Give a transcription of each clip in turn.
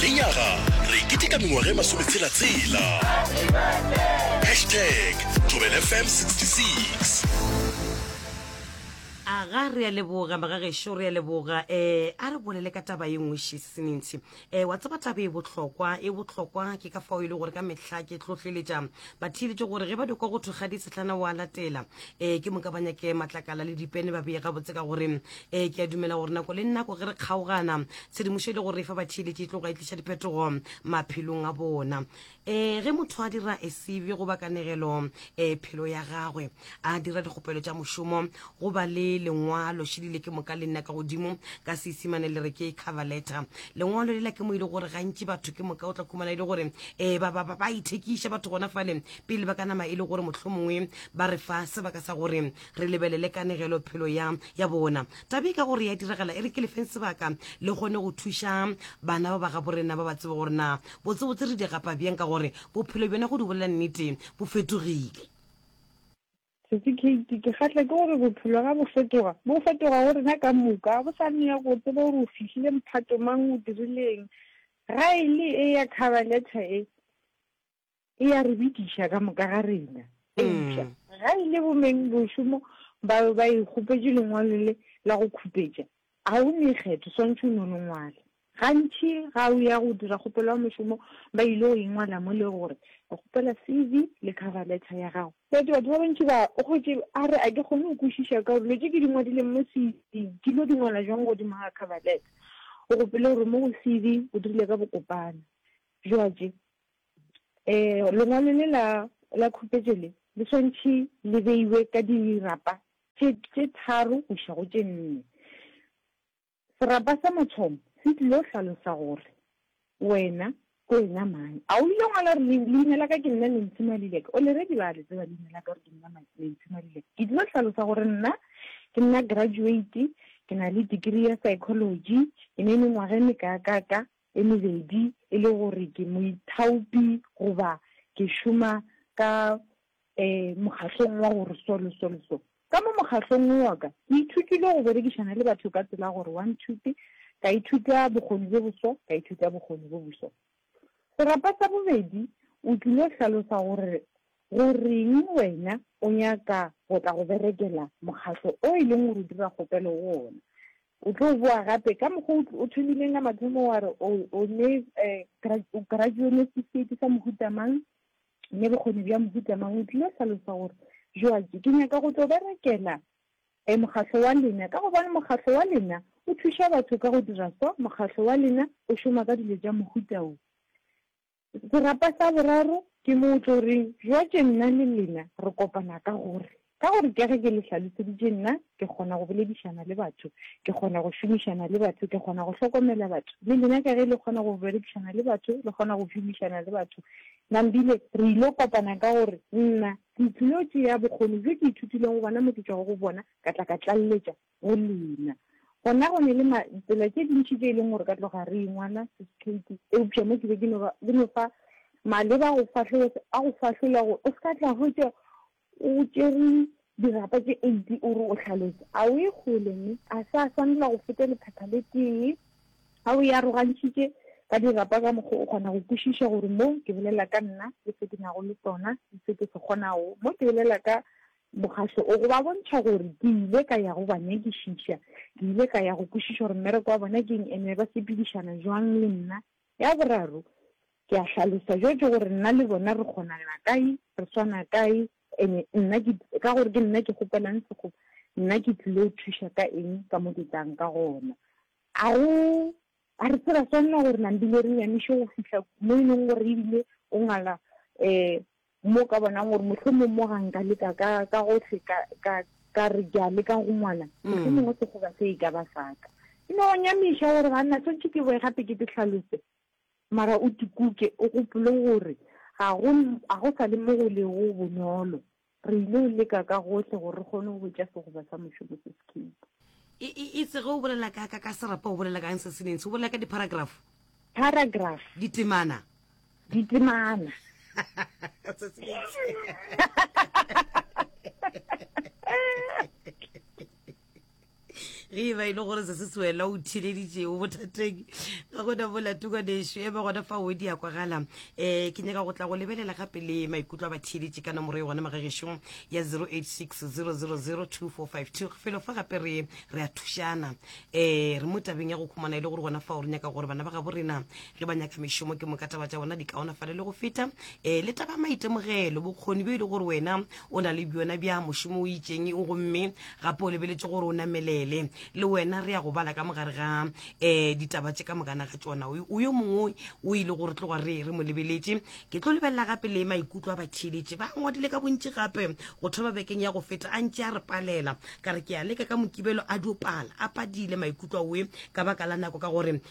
Lenyaga re e keteka mengwaga e masometshela-tshela. Hashtag ThobelFM 66. Aga re a leboga magagešo re a leboga eh a re bolele ka taba ye nngwe šesinintshi eh wa tseba taba e bohlokwa e bohlokwa ke ka fao e le gore ka mehla ke tlhohleletša batheeletši gore ge ba dikwa go thwe kgadi sehlana wa latela eh ke moka ba nyake matlakala le dipene ba beye gabotse ka gore ee ke a dumela gore nako le nako ge re kgaogana tshedimošo e le gore e fa batheeletši e tloga e tliša diphetogo maphelong a bona um ge motho a dira esebe go bakanegelo um eh, phelo ya gagwe a dira dikgopelo tša mošomo go ba le lengwalo šedile ke moka le nna ka godimo ka seisimane le re ke cover letter lengwalo lela ke mo e le gore gantši batho ke moka o tla khumana e le gore um eh, ba ithekiša batho gona fale pele ba ka nama e le gore mohlomongwe ba re fa sebaka sa gore re lebelele kanegelo phelo ya ya bona tabe ka gore ya diragala e re ke lefeng sebaka le kgone go thuša bana ba ba ga borena ba ba tsebe gore na botsebotse re di gapa bjang ka gore bophelo bjona go di bolela nnete bo fetogile setse kate ke kgatlha ke gore bophelo ga bo fetoga bo fetoga go rena ka moka go sa nne go tsebe gore o fihlile mphato mang o dirileng ga e le e ya cover letter e e ya re bitiša ka moka ga rena eupša mm. ga e le bomeng bošomo ba ba e kgopetše lengwalo le la go khupetša ga o ne kgetho swantšhe o ne o le ngwale gantši ga o ya go dira kgopelo ya mošomo ba ile go ingwala mo le gore o kgopela c v le cover letter ya gago but batho ba bantši ba o kgotse a re a ke kgone go kwešiša ka dilo tse ke di ngwadileng mo c v ke lo di ngwala jwang godimo ga cover letter o gopele gore mo go c v o dirile ka bokopana jwatše um lengwalo le la la khupetšo le le swantšhe le beiwe ka dirapa tše tše tharo go iša go tše nne. Serapa sa mathomo se tlilo hlalosa gore wena ke wena mang. A o ile ngwala gore le leina la ka ke nna Nancy Maluleke? Already ba le tseba leina la ka gore ke nna Nancy Maluleke. Ke tlilo hlalosa gore nna ke nna graduate, ke na le degree ya psychology, ke na le mengwaga e meka ka ka. e mebedi e le gore ke moithaopi goba ke šoma ka um mokgahlong wa gore so le so le so. Ka mo mokgahlong wo wa ka, ke ithutile go berekišana le batho ka tsela ya gore one two tee, ka ithuta bokgoni bjo boso, ka ithuta bokgoni bjo boso. Serapa sa bobedi o tlile hlalosa gore goreng wena o nyaka go tla go berekela mokgahlo o e leng gore o dira kgopelo go ona. O tlo boa gape, ka mokgwa o tl-, o thomileng ka mathomo wa re o, o ne, eh, gra-, o graduo ne setifikheiti sa mohuta mang, ne bokgoni bja mohuta mang, o tlile hlalosa gore, Joatše, ke nyaka go tlo berekela, eh, mokgahlo wa lena, ka gobane mokgahlo wa lena o thuša batho ka go dira so, mokgahlo wa lena o šoma ka dilo tša mohuta wo. Serapa sa boraro ke mo o tlo reng, Bjatše nna le lena re kopana ka gore, ka gore ka ge ke le hlaloseditše, nna ke kgona go boledišana le batho, ke kgona go šomišana le batho, ke kgona go hlokomela batho, le lena ka ge le kgona go berekišana le batho, le kgona go šomišana le batho. Nambile, re yilo kopana ka gore nna ke tlilo tšea bokgoni bjo ke ithutileng go bona mo ke tšwago go bona, ka tla ka tlaleletša Go lena. Gona go ne le ma, tsela tše dintši tše e leng gore ka tloga re ingwana, Sis Katie, eupša mo ke be ke no ba, ke no fa Maleba go fahlogo, a go fahlolla gore o se ka tla hwetša o tšere dirapa tše eighty o re o hlalosa. A o ye kgole mme a sa swanela go feta lephepha le tee. A o e arogantšhitše ka dirapa ka mokgwa o kgona go kwešiša gore mo ke bolela ka nna le se ke nago le sona le se ke se kgonago, mo ke bolela ka Mokgatlo o go ba bontšha gore ke ile ka ya go ba nyakišiša. Ke ile ka ya go kwešiša gore mmereko wa bona ke eng ene ba sepedišana bjang le nna. Ya boraro, ke a hlalosa bjotše gore nna le bona re kgonana kae, re swana kae, ene nna ke, ka gore ke nna ke kgopelang sekgoba, nna ke tlilo thuša ka eng ka mo ke tlang ka gona. A go, a re se ra swanela gore nambile re nyamiše go fihla mo e leng gore ebile o ngwala um Mo ka bonang gore mohlomong mo ga nka leka ka ka gohle ka ka ka re ke a leka go ngwana mm. mohlomong o segoba se e ka ba saka e no nyamiša gore ga nna swantšhe ke boe gape ke te tlhalose mara o tikuke o gopole gore ga go ga go sa le mo go le go bonolo re ile o leka ka gohle gore re kgone go botša segoba sa mošomo se sekhipa e, e, e tsege o bolela ka ka ka serapa o bolela kang se seneng se o bolela ka diparagraph paragraph ditemana ditemana ge e ba e le gore se se sewela o thileditšeo bothateng ka gona bolatuka nešo e ba gona fa o di ya kwagala um eh, ke nyaka go tla go lebelela gape le maikutlo a ba theeletše ka nomoro e gona magagešong ya 0860002452 felo fa gape re re a thušana um re mo tabeng ya go khumana e le gore gona fa o re nyaka gore bana ba gabo rena le banyakamišomo ke moka taba tša bona di kaonafale le go feta um le taba maitemogelo bokgoni bjo e le gore wena o na le bjona bja mošomo o itseng gomme gape o lebeletse gore o namelele le wena re ya go bala ka mogare ga um ditaba tse ka mokana ga tsona o yo mongwe o ile gore tloga re re mo lebeletse ke tlo lebelela gape le maikutlo a batheeletše ba ngwadile ka bontši gape go thoba bekeng ya go feta a ntse a re palela ka re ke a leka ka mokibelo a diopala a padile maikutlo oe ka baka la nako ka gore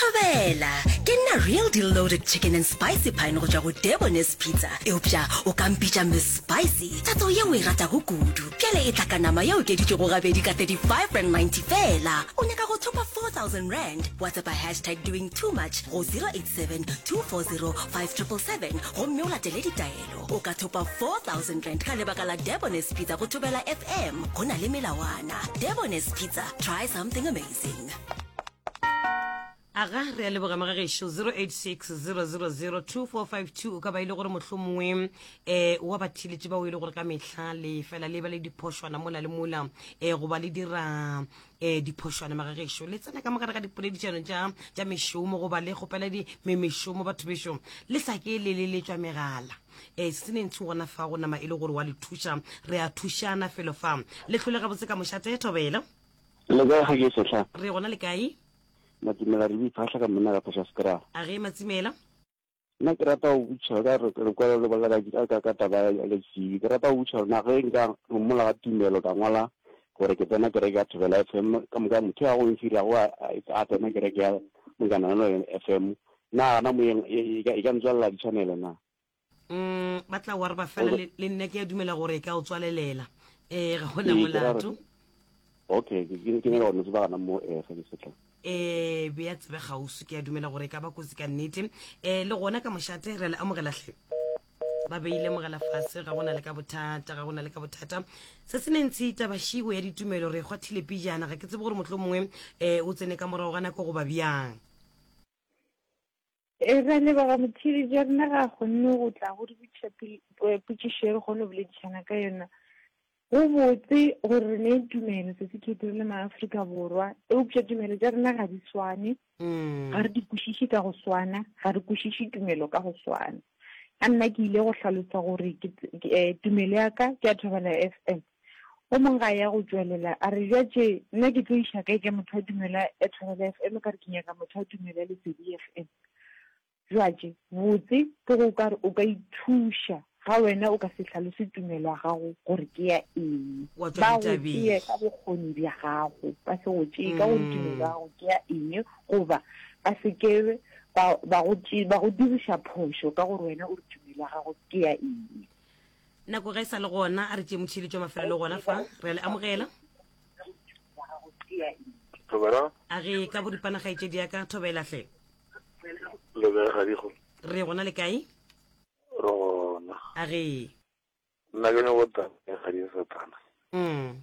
Thobela! Ke nna Real Deal Loaded Chicken and Spicy Pine go tšwa go Debonairs Pizza. Eupša o ka mpitša Miss Spicy. Tatso yeo e ratago kudu. Bjale e tla ka nama e okeditšwego gabedi ka R35.90 feela. O nyaka go thopa R4,000? WhatsAppa hashtag doing too much go 087 240 5777 gomme o latele ditaelo. O ka thopa R4,000 ka lebaka la Debonairs Pizza go Thobela FM. Go na le melawana. Debonairs Pizza. Try something amazing. aga re a leboga magagešo 0860002452 o ka ba e le gore motlho mongwe um eh, wa bathiletše bao e le gore ka mehla le fela le ba le diphošwana mola le mola um goba le dira um diphošwana magagešo le tsena ka mogare ga dipoledišano tša mešomo goba le kgopela mešomo batho bešo le sa ke le le letswa megala um se ne ntsho gona fa go nama e le gore wa le thuša re a thušana felo fa le tlhole gabotse ka mošate thobela Le kae ga ke sehla? Re gona le kae? Matsimela re boiphahla ka monna ka phosha skra. A ge Matsimela? Nna ke rata go butšha ka re re kwala le bolela ka ka ka taba ya le sibi. Ke rata go butšha rena ge nka mola ga tumelo ka ngwala gore ke tsena kereke ya Thobela FM ka moka motho ya go nsira go a tsena kereke ya Mokana le FM. Na gana moyeng e ka ntswalla di channel na? Mm, ba tla wa re ba fela le le nna ke ya dumela gore e ka o tswalelela eh ga gona Ee, ke ra re- molato okay ke ke- ke nyaka gore ba gana mo eh ge ke setla eh be ya tsebe gausu ke ya dumela gore e ka ba kotsi ka nnete eh le gona ka mošate re le amogela hle ba beile mogala fase ga gona le ka bothata ga gona le ka bothata se se nentshi tabašigo ya ditumelo re kgwathile pijana ga ke tsebe gore motlho mongwe um o tsene ka morago ga nako goba bjang E ra leboga Motheeletši wa rena ga a kgonne go tla go re botšiša potšišo ye re kgone go boledišana ka yona. Go botse gore re ne tumelo sesekhethi re le maAfrika Borwa, eupša tumelo tša rena ga di swane, ga re di kwešiše ka go swana, ga re kwešiše tumelo ka go swana. A nna ke ile go hlalosa gore ke, tumelo ya ka ke ya Thobela FM. O mong ga ya go tšwelela, a re, Bja tše, nna ke tlo iša kae ka motho wa tumelo ya Thobela FM, ka re ke nyaka motho wa tumelo ya Lesedi FM? Bja tše, botse, ke go ka re o ka ithuša, ga wena o ka se hlalose tumelo ya gago gore ke ya eng. Ba go tsee ka bokgoni bja gago, ba se go tšee ka gore tumelo ya gago ke ya eng, goba ba se ke ba, ba go tšee, ba go diriša phošo ka gore wena o re tumelo ya gago ke ya eng. nako ga e sa le gona a re tšee motšhilitšo wa mafelelo gona fa re a le amogela Thobela. a re ka boripana gaetšedi ya ka thobela hle Le be ga digo. re gona le kae Rona. a re Nna ke ne go tla ga di satana. mm.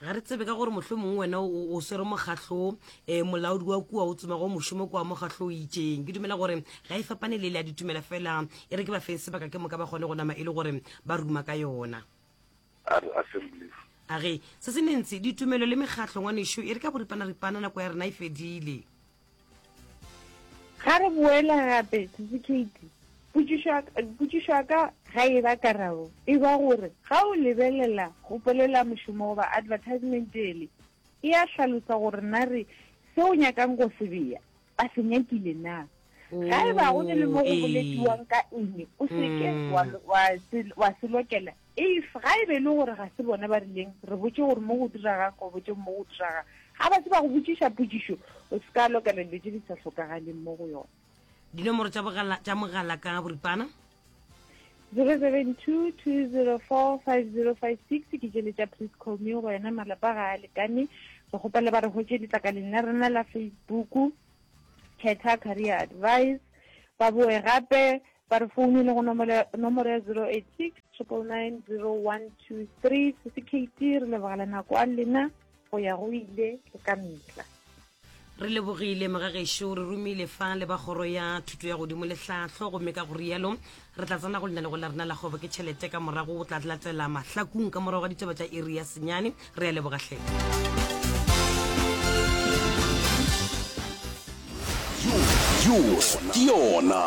Ga re tsebe ka gore mohlomongwe wena o swere mokgatlho um eh, molaodi wa kua o tsoma go mošomo kua mokgatlho o itseng ke dumela gore ga e fapane le le a ditumela fela e re ke ba feng sebaka ke moka ba kgone go nama e le gore ba ruma ka yona a ge se se mentsi ditumelo le mekgatlho ngwanešu e re ka boripana ripana nako ya rena e fedile Ga re boela gape, Sisi Katie, potšišo ya ka ga e ba karabo, e ba gore ga o lebelela go polela mošomo goba advertisement ele, e a hlalosa gore na re se o nyakang go se bea ba se nyakile na. Ga e ba go ne le mo go boletiwang ka eng, o se ke wa se lokela If ga e be e le gore ga se bona ba rileng, re botše gore mo go diraga, go botše mo go diraga. Ga ba se ba go botšiša potšišo, o se ka lokela dilo tše di sa hlokagaleng mo go yona. Dinomoro tša bogala tša mogala ka boripana. 0722045056 ke tšele tša Please Call Me go yena malapa ga a lekane. Re kgopela ba re hwetše letlakaleng la rena la Facebook, Khetha Career Advice. Ba boe gape Ba re founele go nomoro ya, nomoro ya zero eight six, triple nine, zero one two three. Sesi Keiti re leboga le nako a lena go ya go ile le ka mehla. Re lebogile mga gešo, re romile fa le ba kgoro ya thuto ya godimo le hlahlo gomme ka go rialo re tla tsena go lenaneo la rena la kgwebo ke tšhelete ka morago go tla latela mahlakung ka morago ga ditaba tša iri ya senyane. re a leboga hle ke yona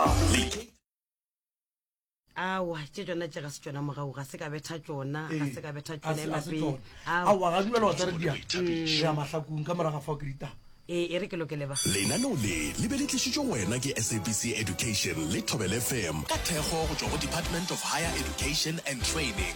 awa tše tsona tše ga se tsona mogago ga se ka betha tsona ga se ka betha tsona emapele awa ga dumela wa tsare dia ya mahlakong ka moraga fa o ke ditaba ee e re ke lokele ba lenaneo le le be le tlišitšwe wena ke sabc education le thobel fm ka thekgo go tšwa go department of higher education and training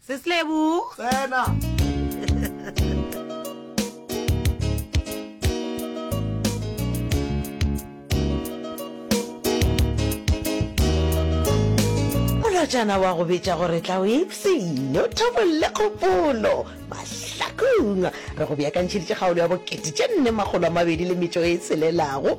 Seslebu. Tsena. Molotšana wa go betša gore tla o ipsene o thabolle kgopolo mahlakong. Re go beakantšheditše kgaolo ya bokete tše nne makgolo a mabedi le metšo e tshelelago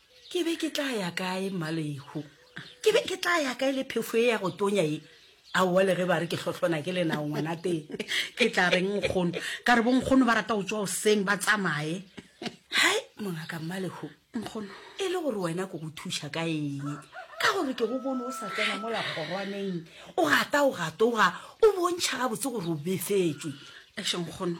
ke be ke tla ya kae mmalehu ke be ke tla ya kae le phefo e ya go tonya e aowa le ge ba re ke hlohlona ke lenao ngwana teng ke tla reng nkgono ka re bonkgono ba rata go tswa oseng ba tsamaye hai mongaka mmalehu nkgono e le gore wena ke go thuša ka eng ka gore ke go bone o sa tsena mo lakgorwaneng o gata o gatoga o bontšha gabotse gore o befetswe ešo nkgono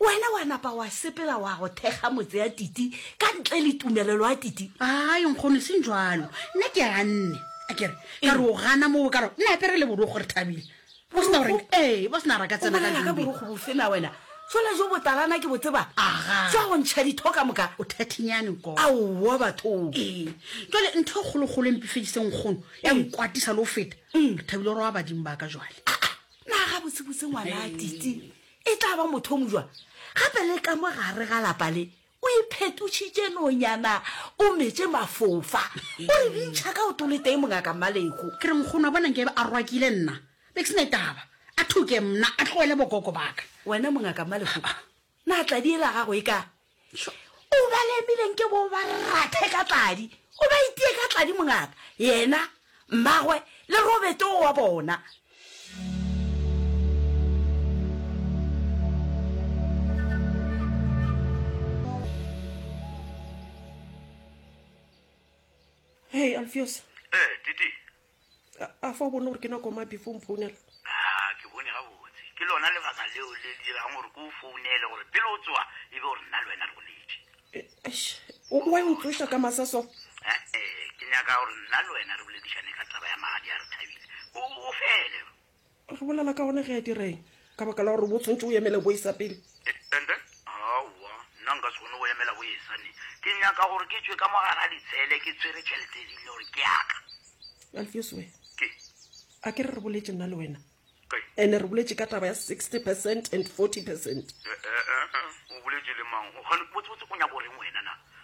Wena wa napa wa sepela wa go thekga motse ya titi ka ntle le tumelelo ya titi. Ai nkgono seng jwalo. Nna ke ganne. A kere ka re o gana mo o ka re nna apere le borogo re thabile. Bo sna gore ee bo sna re ka tsena ka jule. Ka borogo bo fena wena. Sola jo botalana ke botseba. Aga. Tswa go ntsha ditho ka moka. O thathinyane nkgono. A wa batho. Ee. Jwale ntho e kgolo kgolo empifedise nkgono ya nkwatisa le o feta. Re thabile gore wa badimo ba ka jwale. Naga botse botse ngwana a titi. E tla ba motho o mojwa gape le ka mo gare ga lapa le. O iphetotšhitše nonyana, o metše mafofa, o re bintšha ka oto le tee mongaka Mmalego. Ke re, Nkgono, a bona nke a rwakile nna. Be ke se ne taba. A thuke mna, a tloele bokoko baka. Wena mongaka Mmalego, na tladi e la gago e ka o ba lemileng ke bo ba rathe ka tladi o ba itie ka tladi mongaka yena mmagwe le robeto wa bona hey alfios eh titi a fa o bone gore ke nako ma before mphounela a ke bone gabotse ke lona lebaka leo le dirang gore ke o founele gore pele o tsoa e be gore nna le wena re go letše wa e ntsoša ka masa so ee ke nyaka gore nna le wena re boledišane ka taba ya magadi a re thabile o fele Re bolela ka one ge a direng ka baka la gore bo tshwantse o emele boesa pele. And then aowa nna nka se kgone go emela boesa ne ke nyaka gore ke tšwe ka mo gare ga ditshele ke tshwere tšhelete e rile gore ke yaka. Alfios we ke a ke re re boletše nna le wena ene re boletše ka taba ya 60 percent and 40 percent. Eh, eh, eh, eh, o boletše le mang? Gane botsebotse o nyaka o reng wena na?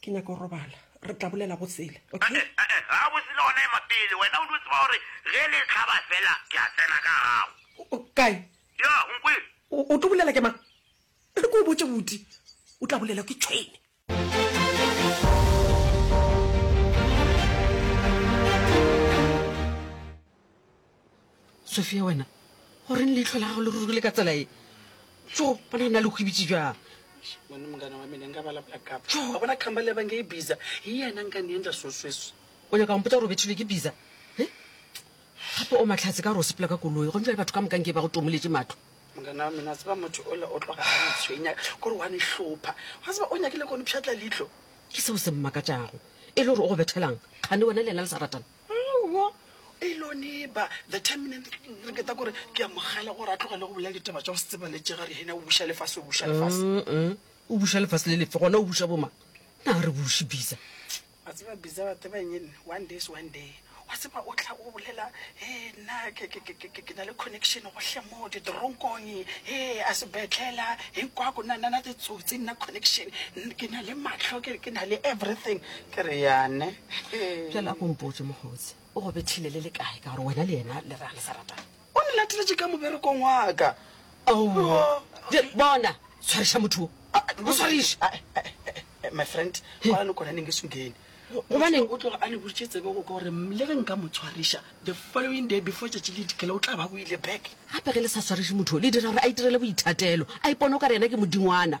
Ke nyaka go robala. Re tla bolela go sele, okay? Ee, gabotse le gona ema pele. Wena o dio tseba gore ge le hlaba fela ke a tsena ka gago. Kae? Ya, o nkwele? O tlo bolela ke mang? Re ko o botše boti. O tla bolela ke tšhwene. sofia wena goreng leitlho la gago le rurugile ka tsela e so bona go na le kgwebitse jang mone mongana wa mene nka bala blackup a bona kgamba le banke e bisa e yena nka ne endla sosweso o nyaka mpotsa gore o bethilwe ke bisa e gape o matlhatse ka gore o sepela ka koloi go ntšale batho ka mokanke ba go tomoletse matlo mongana wa mene a tseba motho o le o tloga a tshwenya kore wa ne hlopha ga tseba o nyakile kone pšhatla leitlho ke seo se mmakatšago e le gore o go bethelang kgane wena le ena le sa ratana Aowa, Eloneba, the terminant, re keta kore ke a mogale gore a tlogele go bolela ditaba tša go se tsebaletšega re hena o buša lefase o buša lefase. O buša lefase le lefe gona o buša bo mang? Na re buši Biza. Wa tseba Biza wa tseba eng enne one day is one day wa tseba o tla o bolela he nna ke ke ke ke ke na le connection gohle mo ditoronkong he a sebetlela he kwa ko na na na ditsotsi nna connection ke na le matlho ke ke na le everything ke re yane Bjale a ko mpotse, Mokgotsi, o go bethile le le kae ka gore wena le yena le re a le sa ratane? O nlateletše ka moberekong wa ka. Aowa. Bjale, bona, tshwariša motho wo. Mo tshwariše. Ae, ae, ae, my friend, kwala nokwana neng e se o kene. Gobaneng? O tloga a le boditše tsebe go ka gore le ge nka mo tshwariša, the following day before tšatši le dikela o tla ba o ile back. Gape ge le sa tshwariše motho wo, le dira gore a itirele boithatelo, a ipone o ka re yena ke modingwana.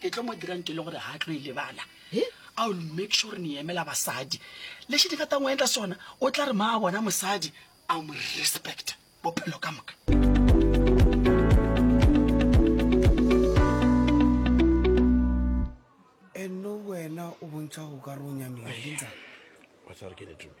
Ke tlo mo dirang ke le gore ga a tlo e lebala. I will make sure ni emela basadi. Lexi ni nga ta n'wi endla xona, u tla ri ma a vona musadi, a n'wi respect-a bophelo ka moka. Eno wena u vontsha u ka ri u nyamile, ke ntsani? Wa tseba re ke ni tume.